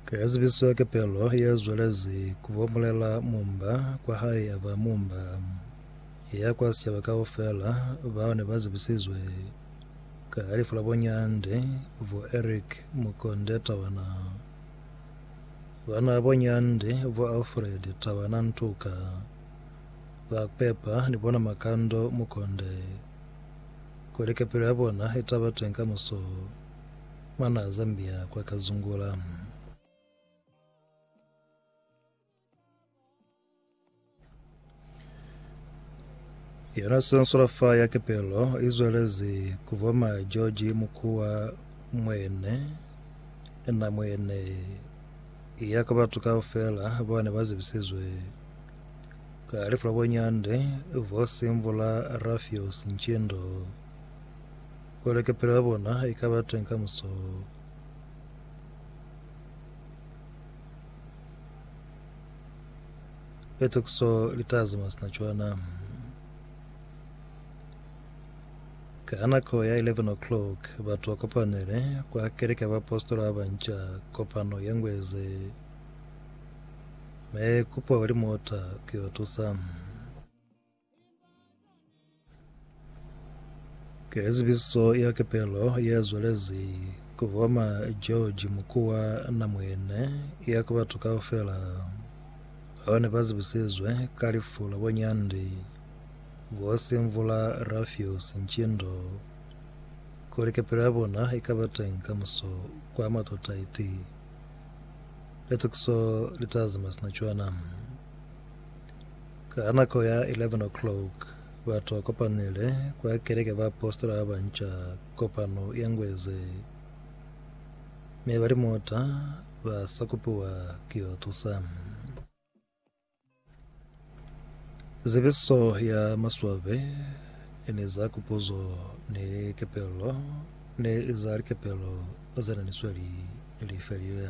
Ka ya zibiswa kepelo ye zwelezi ku bomulela mumba kwa hae ya ba mumba ya kwa sicaba kaufela, bao ne ba zibisizwe ka lifu la bonyande bo Eric Mukonde Tawana, bana bonyande bo Alfred Tawana Ntuka, ba pepa ni bona Makando Mukonde, kuli kepelo ya bona i taba teng kamuso. Mwanaa Zambia kwa Kazungula. Yona Sensorafa ya Kepelo i zwelezi ku voma George Mukuwa mwene na mwene ya ka batu kaufela ba ne ba zibisizwe ka lifu la bonyande bo Simvula Rafios Ntshindo Kole kapelo ya bona i ka ba teng kamuso. Petokiso li ta zama sina cwana. Ka nako ya 11 o'clock, batu ba kopanele kwa keleke ya baapositola ba banca kopano ye ngweze. Me kupo ba limota ku yo tusa. Ke zibiso ya kepelo ye zwelezi ku boma George Mukuwa na mwene ya ku batu kaufela bao ne ba zibisizwe ka lifu la bonyandi bo Simvula Rafios Ntshindo kuli kepelo ya bona i ka ba teng ka muso kwa Matotaiti. Litukiso li tazi masina cwana. Ka nako ya 11 o'clock, bato kopanile kwa keleke ba apositola ba banca kopano ye ngwe ze, mi bali muta ba sa kupiwa ki yo tusa. Zibiso ya maswabi ni za kupuzo ni kepelo ni za likepelo ze ne ni sweli li felile.